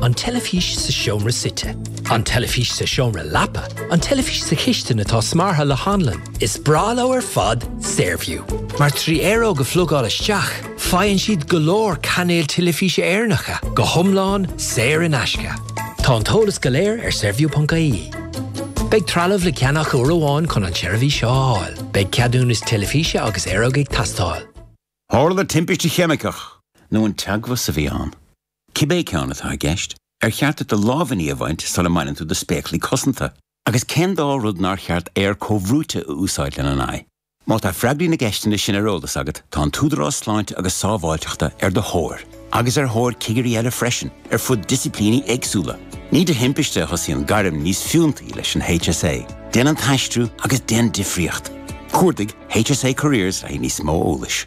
An teilifís sa seomra suite. An teilifís sa seomra leapa. An teilifís sa chistin atá smeartha le hanlann. Is breá leo ar fad Saorview, mar trí aeróg a phlugáil isteach, faigheann siad go leor cainéil teilifíse Éireannacha, go hiomlán saor in aisce. Tá an t-eolas go léir ar Saorview.ie. Beidh trealamh le ceannach uair amháin chun an tseirbhís seo a fháil. Beidh ceadúnas teilifíse agus aeróg ag teastáil. Tharla timpiste cheimiceach, nó an teagmhas a bhí ann? Cibé ceann atá i gceist, ar cheart duit do lámhainní a bhaint sula mbaineann tú do spéaclaí cosanta? Agus cén dá rud nár cheart aer comhbhrúite a úsáid lena n-aghaidh? Má tá freagraí na gceisteanna sin ar eolas agat, tá an tÚdarás Sláinte agus Sábháilteachta ar do thóir, agus ar thóir cigirí eile freisin, ar fud disciplíní éagsúla. Ní de thimpiste a thosaíonn gairm níos fiúntaí leis an HSA, Déan an tAistriú agus Déan Difríocht! Cuardaigh HSA Careers le haghaidh níos mó eolais.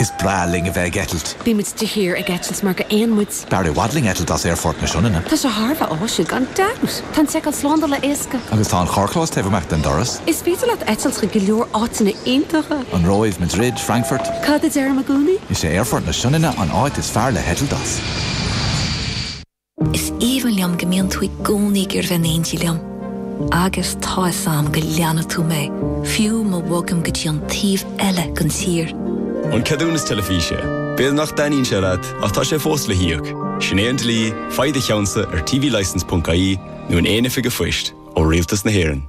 Is breá linn a bheith ag eitilt. Bímid de shíor ag eitilt mar gur éin muid. B'fhearr i bhfad linn eitilt as Aerfort na Sionainne. Tá sé thar a bheith áisiúil, gan dabht. Tá an tseiceáil slándála éasca. Agus tá an carrchlós taobh amuigh den doras. Is féidir leat eitilt chuig go leor áiteanna iontacha. An Róimh, Madrid, Frankfurt. Cad a deirim i gcónaí? Is é Aerfort na Sionainne an áit is fearr le heitilt as. Is aoibhinn liom go mbíonn tú i gcónaí ag bheith in éindí liom. Agus tá fhios a'm go leanfaidh tú mé, fiú má bhogaim go dtí an taobh eile den tír. An ceadúnas teilifíse. B'fhéidir nach dtaitníonn sé leat, ach tá sé fós le híoc. Sin é an dlí, faigh do cheannsa ar tvlicense.ie nó in aon oifig a' phoist ó Rialtas na hÉireann.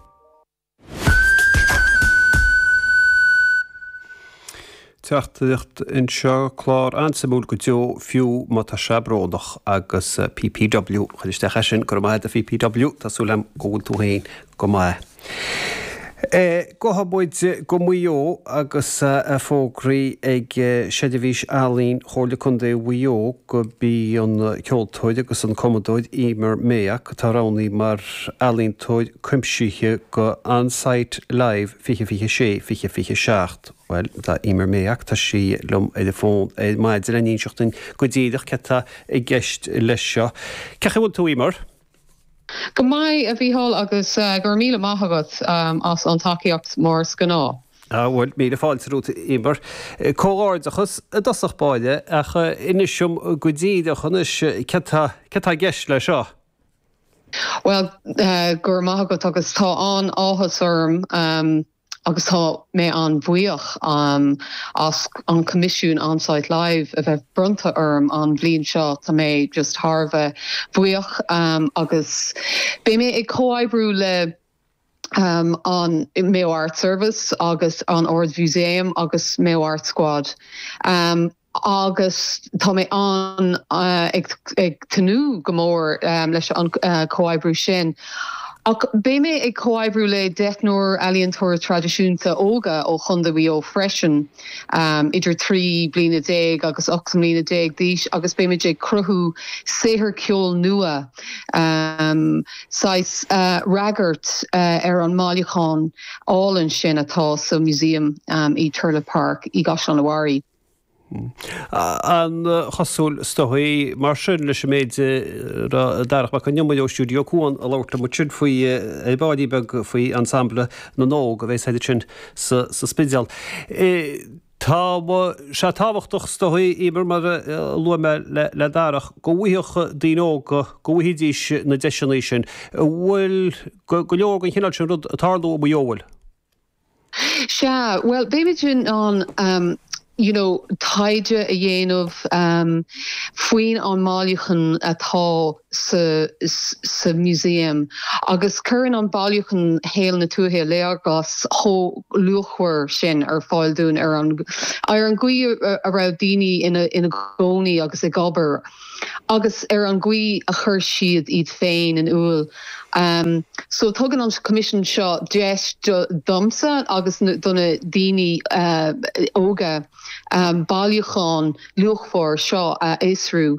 Teachtaireacht anseo, clár an-suimiúil go deo, fiú má tá sé brónach agus PPW, chuir isteach ar sin, go raibh maith agat a PPW, tá súil agam go bhfuil tú féin go maith. Gabhfaidh muid go Maigh Eo agus é fógraithe ag Seirbhís Ealaíon Chomhairle Contae Mhaigh Eo gurb í an ceoltóir agus an cumadóir Emer Mayock atá roghnaithe mar ealaíontóir cuimsithe do On Sight Live 2026, 2027. Bhuel, tá Emer Mayock, tá sí liom ar an bhfón ar maidin le n-inseacht dúinn go díreach céard tá i gceist leis seo. Cén chaoi a bhfuil tú, Emer? Go maith, a Mhíchíl, agus go raibh míle maith agat as an tacaíocht mar is gnáth. Ah, bhuel, míle fáilte romhat, Emer. Comhghairdeachas i dtosach báire, ach inis dom go díreach anois céard tá i gceist leis seo. Bhuel, go raibh maith agat agus tá an-áthas orm agus tá mé an-bhuíoch as an coimisiún On Sight Live a bheith bronnta orm an bhliain seo. Tá mé just thar a bheith buíoch agus beidh mé ag comhoibriú le an Mayo Arts Service agus an Ard-Mhúsaem agus Mayo Arts Squad. agus tá mé ag tnúth go mór leis an chomhoibriú sin. Ach beidh mé ag comhoibriú le deichniúr ealaíontóirí traidisiúnta óga ó Chontae Mhaigh Eo freisin, idir 13 bliana agus 18 mbliana d'aois, agus beimid ag cruthú saothar ceoil nua, saghas fhreagairt ar an mbailiúchán álainn sin atá sa Museum i Turlough Park i gCaisleán an Bharraigh. An-chosúil is dóigh, mar sin, leis an méid a raibh Darach Mac Con Iomaire ó Stiúideo Cuan ag labhairt liom ansin faoi Bád Beag, faoi Ensemble na nÓg a bheidh siad ansin sa Spidéal. Tá sé tábhachtach is dóigh, Emer, mar a luaigh mé le Darach, go bhfaigheadh daoine óga, go bhfaighidís na deiseanna sin. An bhfuil go leor den chineál sin rud ag tarlú i Maigh Eo? An bhfuil? Sea, bhuel, beimid in ann, em, you know, taighde a dhéanamh em faoin an mbailiúchán atá sa sa museum agus cuireann an bailiúchán shaol na tuaithe léargas chomh luachmhar sin ar fáil dúinn ar an gcaoi a raibh daoine ina gcónaí agus ag obair agus ar an gcaoi a chuir siad iad féin in iúl. Em so tugann an coimisiún seo deis domsa agus do na daoine óga bailiúchán luachmhar seo a fhiosrú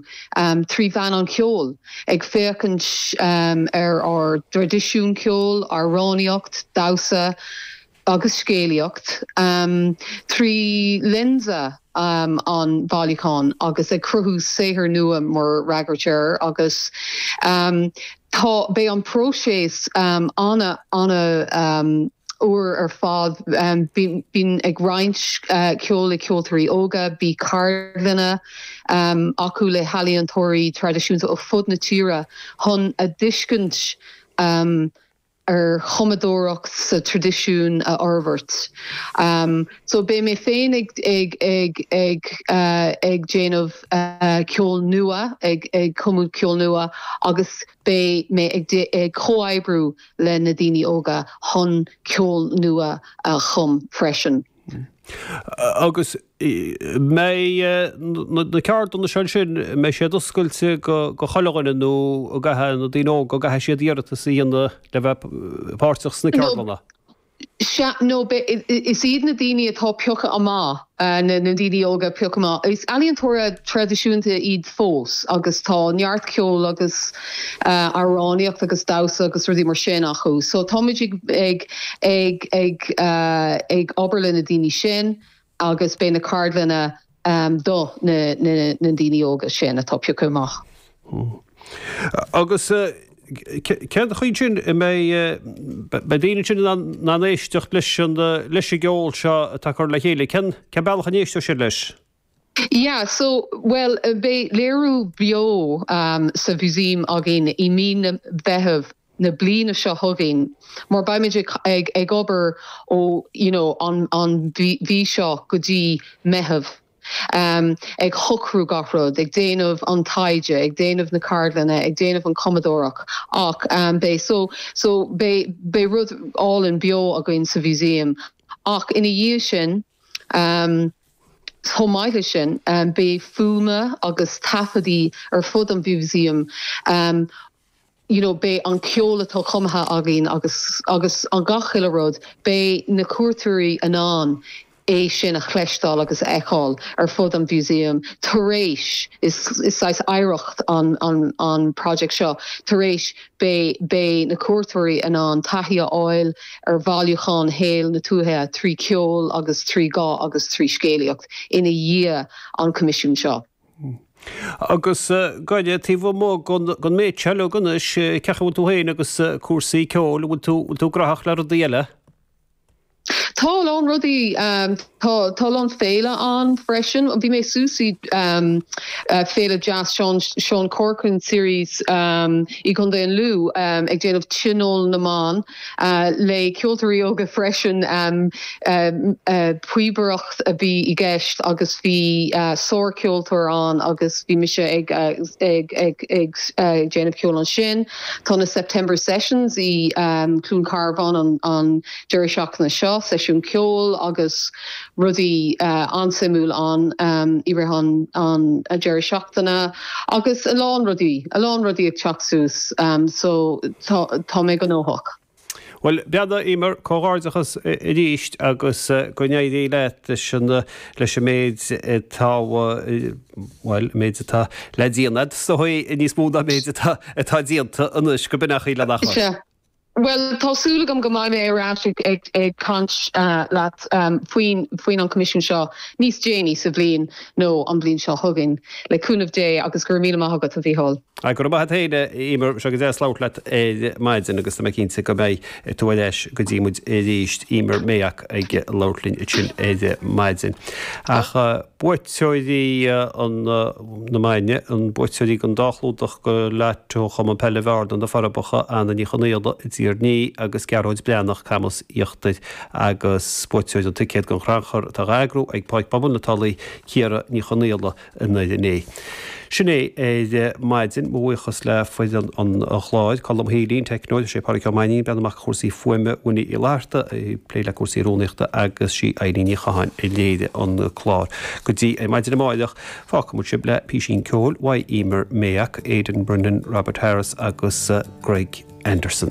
trí mheán an cheoil, ag féachaint ar ár dtraidisiún ceoil, amhránaíocht, damhsa, agus scéalaíocht trí lionsa an bhailiúcháin agus ag cruthú saothair nua mar fhreagairt air agus tá beidh an próiseas an- an-úr ar fad bíonn ag roinnt ceol le ceoltóirí óga beidh ceardlanna acu le healaíontóirí traidisiúnta ó fud na tíre chun a dtuiscint a ar chumadóireacht sa traidisiún a fhorbhairt. So beidh mé féin ag ag ag ag ag déanamh ceol nua ag ag cumadh ceol nua agus beidh mé ag ag comhoibriú le na daoine óga chun ceol nua a chum freisin. Agus mbeidh na ceardlanna seo ansin, mbeidh siad oscailte do chuile dhuine nó an gcaithfidh na daoine óga, an gcaithfidh siad iarratas a dhéanamh le bheith páirteach sna ceardlanna? Nó, is is iad na daoine atá pioctha amach, na daoine óga a phiocadh amach, is ealaíontóirí traidisiúnta iad fós agus tá neart ceoil agus amhránaíocht agus damhsa agus rudaí mar sin acu. So táimid ag ag obair le na daoine sin agus beidh na ceardlanna do na daoine óga sin atá pioctha amach. Agus cén chaoi sin a mbeidh na daoine sin in ann éisteacht leis an gceol seo atá curtha le chéile? Cén bealach a n-éisteoidh siad leis? Yeah, so, bhuel, beidh léiriú beo sa Mhusaem againn i mí na Mheitheamh na bliana seo chugainn mar beimid ag obair ó, you know, an mhí seo go dtí Meitheamh, ag shocrú gach rud, ag déanamh an taighde, ag déanamh na ceardlanna, ag déanamh an cumadóireacht, ach beidh, so, so, beidh rud álainn beo againn sa Mhusaem ach ina dhiaidh sin, Chomh maith leis sin, beidh fuaimeanna agus taifeadtaí ar fud an mhúsaem, you know, beidh an ceol atá cumtha againn agus an gach chuile rud, beidh na cuairteoirí in ann é sin a chloisteáil agus a fheiceáil ar fud an mhúsaem tar éis, is saghas oidhreacht an project seo, tar éis Beidh na cuairteoirí in ann taithí a fháil ar bhailiúchán shaol na tuaithe trí cheol agus trí dhán agus trí scéalaíocht ina dhiaidh an coimisiúin seo. Agus go deimhin taobh amuigh den méid seo uilig anois, cén chaoi a bhfuil tú féin agus cúrsaí ceoil, an bhfuil tú gnaitheach le rudaí eile? Tá a lán rudaí ann. Tá a lán féile ann freisin. Bhí mé suas i Féile Jazz, Seán Corcoran series i gContae an Lú ag déanamh tionól na mban le ceoltóirí óga freisin. Píobaireacht a bhí i gceist agus bhí sárcheoltóir ann agus bhí mise ag déanamh ceoil ansin. Tá na September Sessions i gCluain Carbhán an deireadh seachtaine seo, seisiún ceoil agus rudaí an-suimiúil ann i rith an deireadh seachtaine agus a lán rudaí, a lán rudaí ag teacht suas so tá mé gnóthach. Bhuel, a bhean, a Emer, comhghairdeachas arís agus go n-éirí an t-ádh leat leis an méid atá, bhuel, an méid atá le déanamh, agus níos mó ná an méid atá déanta anois, go deimhin, le n-aghaidh lena chois. Bhuel, tá súil agam go mbeidh mé ar ais ag caint leat faoin an coimisiún seo níos déanaí sa bhliain nó an bhliain seo chugainn, le cúnamh Dé, agus go raibh míle maith agat, a Mhícheáil. Ach go raibh maith a't féin, a Emer, is go deas labhairt leat ar maidin, agus tá mé cinnte go mbeidh tú ar ais go dtí muid arís. Emer Mayock ag labhairt linn ansin ar maidin. Ach. Buaiteoirí na maidne, na buaiteoirí den dá chlúdach do Lotto Chumann Peile Bhearna, Na Forbacha, Anna Ní Chonaola, i dTír an Fhia, agus Gearóid Breathnach, Camas Íochtair, agus buaiteoir an ticéid don chrannchur atá á eagrú ag Páirc Pobail na Tulaí, Ciara Ní Chonaola, i nDoire an Fhéich. Sin é ar maidin. Mo bhuíochas le foireann an chláir, Colm Healy, an teicneoir, is é Pádraig Ó Mainnín a bhreathnaigh amach cúrsaí fuaime, Winnie Uí Fhlatharta a phléigh le cúrsaí rúnaíochta agus sí Eileen Ní Chatháin a léirigh an clár. Go dtí ar maidin amáireach, fágfaimid sibh le písín ceoil uaidh Emer Mayock, Aidan Brennan, Robert Harris agus Greg Anderson.